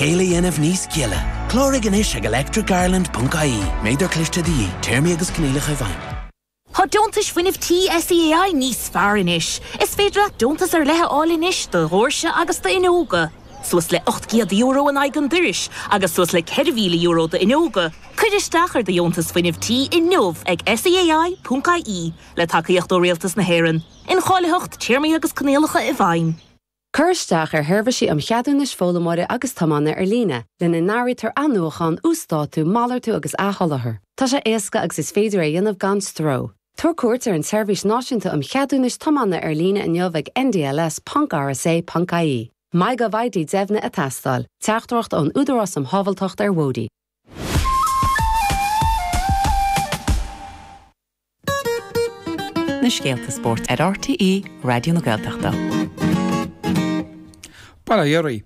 Céile dhéanamh níos gile. Cláraigh anois ag electricireland.ie. Méadar cliste de dhíth. Téarmaí agus coinníollacha i bhfeidhm. Tá Deontais Fuinnimh Tí SEAI níos fearr anois! Is féidir leat deontas ar leith a fháil anois do dhoirse agus d'fhuinneoga, suas le €800 in aghaidh an dorais agus suas le €4,000 d'fhuinneoga. Cuir isteach ar do Dheontas Fuinnimh Tí inniu ag SEAI.ie, le tacaíocht ó Rialtas na hÉireann. Incháilitheacht, Téarmaí agus Coinníollacha i bhfeidhm. Cuir isteach ar sheirbhísí um cheadúnais foghlaimeora agus tiomána ar líne, lena n-áirítear athnuachán, uasdátú, malartú agus athsholáthar. Tá sé éasca agus is féidir é a dhéanamh gan stró. Tabhair cuairt ar an tSeirbhís Náisiúnta um Cheadúnais Tiomána ar líne inniu ag ndls ponc rsa ponc ie. MyGovID Deimhnithe ag teastáil, Teachtaireacht ón Údarás um Shábháilteacht ar Bhóithre. Na scéalta spóirt ar RTÉ Raidió na Gaeltachta. Barra Dhoirí.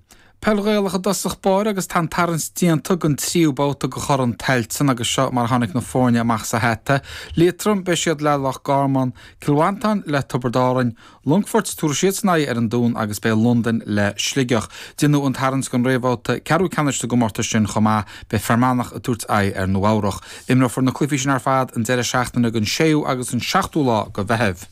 Peil Ghaelach i dtosach báire agus tá an tarraingt déanta den tríú babhta de Chorn Tailteann agus seo mar a tháinig na foirne amach sa hata, Liatroim, Beidh siad le Loch Garman, Cill Mhantáin, le Tiobraid Árainn, Longfoirt, tabharfaidh siadsan aghaidh ar an Dún agus beidh Londain le Sligeach. Deineadh an tarraingt don réamhbhabhta ceathrú ceannais sa gcomórtas sin chomh maith. Beidh Fear Manach ag tabhairt aghaidh ar Nua Eabhrach. Imreofar na cluichí sin ar fad an deireadh seachtaine den 6ú agus an 7ú lá de Mheitheamh.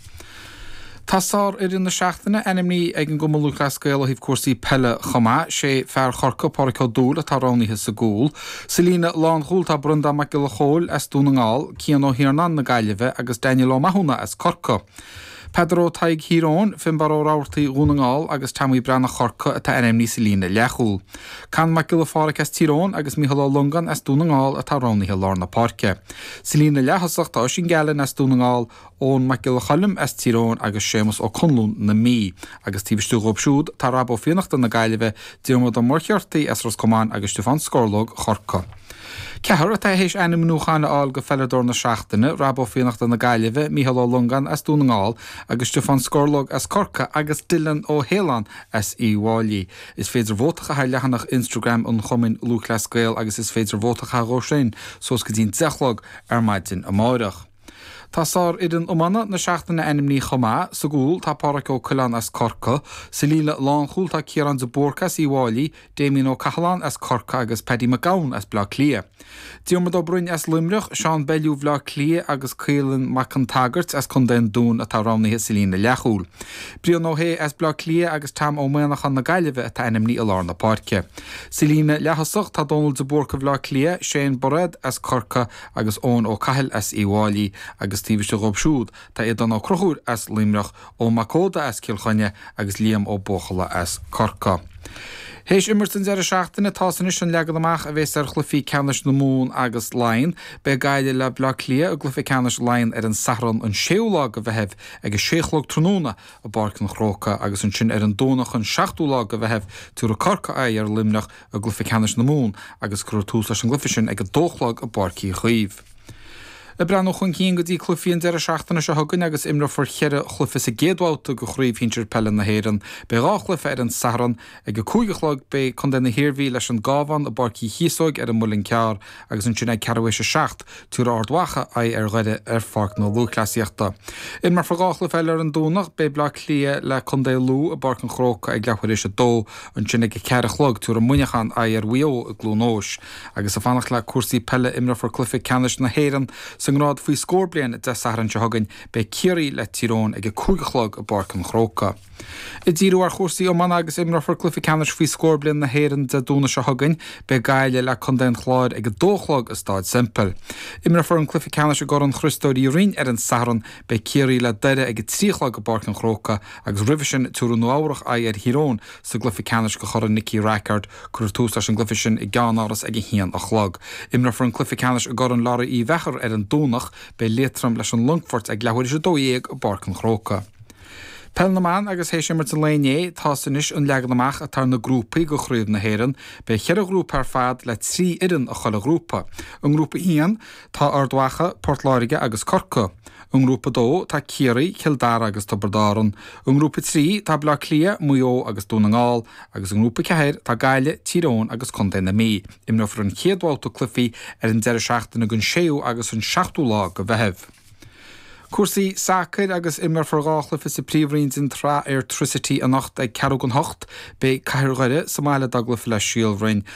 Tá sárfhoireann na seachtaine ainmnithe ag an gCumann Lúthchleas Gael ó thaobh cúrsaí peile chomh maith. Sé fear Chorca, Pádraic Ó Dúill, atá roghnaithe sa gcúl. Sa líne lánchúil tá Brendán Mac Giolla Chóill as Dún na nGall, Cian Ó hIarnáin na Gaillimhe agus Daniel Ó Mathúna as Corcaigh. Peadar Ó Taidhg Thír Eoghain, Finbarr Ó Rabhartaigh Dhún na nGall agus Tommy Breathnach Chorca atá ainmnithe sa líne leathchúl. Conn Mac Giolla Phádraig as Tír Eoghain agus Micheál Ó Longáin as Dún na nGall atá roghnaithe i lár na páirce. Sa líne leath-thosach tá Oisín Gallen as Dún na nGall, Eoghan Mac Giolla Choilm as Tír Eoghain agus Séamus Ó Conluain na Mí. Agus taobh istigh dhóibh siúd tá Rob Ó Fiannachta na Gaillimhe, Diarmuid Ó Muircheartaigh as Ros Comáin agus Stiofán Scorlóg Chorca. Ceathrar atá th'éis ainmniúchán a fháil do Pheileadóir na Seachtaine, Rob Ó Fiannachta na Gaillimhe, Micheál Ó Longáin as Dún na nGall agus Stiofán Scorlóg as Corcaigh agus Dylan Ó hAoileáin as Uí bhFáilí. Is féidir vóta a chaitheamh ar leathanach Instagram an Chumainn Lúthchleas Gael agus is féidir vóta a chaitheamh dhóibh sin suas go dtí'n deich a chlog ar maidin amárach. Tá sárfhoireann iomána na seachtaine ainmnithe chomh maith. Sa gcúl tá Pádhraic Ó Coileáin as Corca. Sa líne lánchúil tá Ciarán de Búrca as Uíbh Fhailí, Damien Ó Cathaláin as Corca agus Paddy Mac Gabhann as Bleá Cliath. Diarmuid Ó Broin as Luimneach, Seán Bellew Bhleá Cliath agus Caolan Mac an tSagairt as Contae an Dúin atá roghnaithe sa líne leathchúl. Brian Ó Shé as Bleá Cliath agus Tom Ó Maonachain na Gaillimhe atá ainmnithe i lár na páirce. Sa líne leaththosach tá Dónal de Búrca Bhleá Cliath, Shane Bairéad as Corca agus Eoin Ó Cathail as Uí bhFáilí agus taobh istigh dhóibh siúd tá Aodán Ó Crochúir as Luimneach, Eoin Mac Óda as Cill Chainnigh agus Liam Ó Buachalla as Corca. Théis imirt an deireadh seachtaine tá's anois an leagan amach a bhéas ar chluichí ceannais na Mumhan agus Laighean. Beidh Gaillimh le Bleá Cliath i gcluiche ceannais Laighean ar an Satharn an 6ú lá go Mheitheamh ag a sé chlog tráthnóna i bPáirc an Chrócai agus ansin ar an Domhnach an 7ú lá go Mheitheamh tiúrfaidh Corca aghaidh ar Luimneach i gcluiche ceannais na Mumhan agus cuirfear tús leis an gcluiche sin ag a dó a chlog i bPáirc Uí Chaoimh. Ag breathnú chun cinn go dtí cluichí an deireadh seachtaine seo chugainn agus imreofar ceithre chluiche sa gcéad bhabhta de Chraobh Shinsir Peile na hÉireann, beidh dhá chluiche ar an Satharn. Ag a cúig a chlog beidh contae na hIarmhí leis an gCabhán i bPáirc Uí Chíosóig ar an Muileann gCearr agus ansin ag ceathrú théis a seacht, tiúrfaidh Ard Mhacha aghaidh ar Dhoire ar Pháirc na Lúthchleasaíochta. Imreofar dhá chluiche eile ar an Domhnach, beidh Bleá Cliath le contae Lú i bPáirc an Chrócai ag leathuair théis a dó, ansin ag a ceathair a chlog tiúrfaidh Muineachán aghaidh ar Mhaigh Eo i gCluain Eois. Agus ag fanacht le cúrsaí peile imreofar cluiche ceannais na hÉireann sa ngrád faoi scór bliain Dé Sathairn seo chugainn, beidh Ciarraí le Tír Eoghain ag a cúig a chlog i bPáirc an Chrócai. Ag díriú ar chúrsaí iomána agus imreofar cluiche ceannais faoi scór bliain na hÉireann Dé Domhnaigh seo chugainn. Beidh Gaillimh le contae an Chláir ag a dó a chlog i Stáid Semple. Imreofar an cluiche ceannais i gCorn Chriostóir Uí Rinn ar an Satharn. Beidh Ciarraí le Doire ag a trí a chlog i bPáirc an Chrócai agus roimhe sin tiúrfaidh Nua Eabhrach aghaidh ar Thír Eoghain sa gcluiche ceannais go Chorn Nicky Rackard. Cuirfear tús leis an gcluiche sin i gceannáras ag a haon a chlog. Imreofar an cluiche ceannais i gCorn Laraí Uí Mheachair ar an Domhnach. Beidh Liatroim leis an Longfort ag leathuair théis a dó dhéag i bPáirc an Chrócai. Peil na mBan agus théis imirt an lae inné, tá's anois an leagan amach atá ar na grúpaí go Chraobh na hÉireann. Beidh cheithre ghrúpa ar fad le trí fhoireann i chuile ghrúpa. I nGrúpa 1, tá Ard Mhacha, Port Láirge agus Corca. I nGrúpa 2, tá Ciarraí, Cill Dara agus Tiobraid Árann. I nGrúpa 3, tá Bleá Cliath, Maigh Eo agus Dún na nGall. Agus i nGrúpa 4, tá Gaillimh, Tír Eoghain agus Contae na Mí. Imreofar an chéad bhabhta cluichí ar an deireadh seachtaine den 6ú agus an 7ú lá go Mheitheamh. Cúrsaí sacair agus imreofar dhá chluiche sa Príomhroinn den tsraith Airtricity anocht ag ceathrú chun hocht. Beidh Cathair Dhoire sa mbaile dá gcluiche le Síol Bhroin.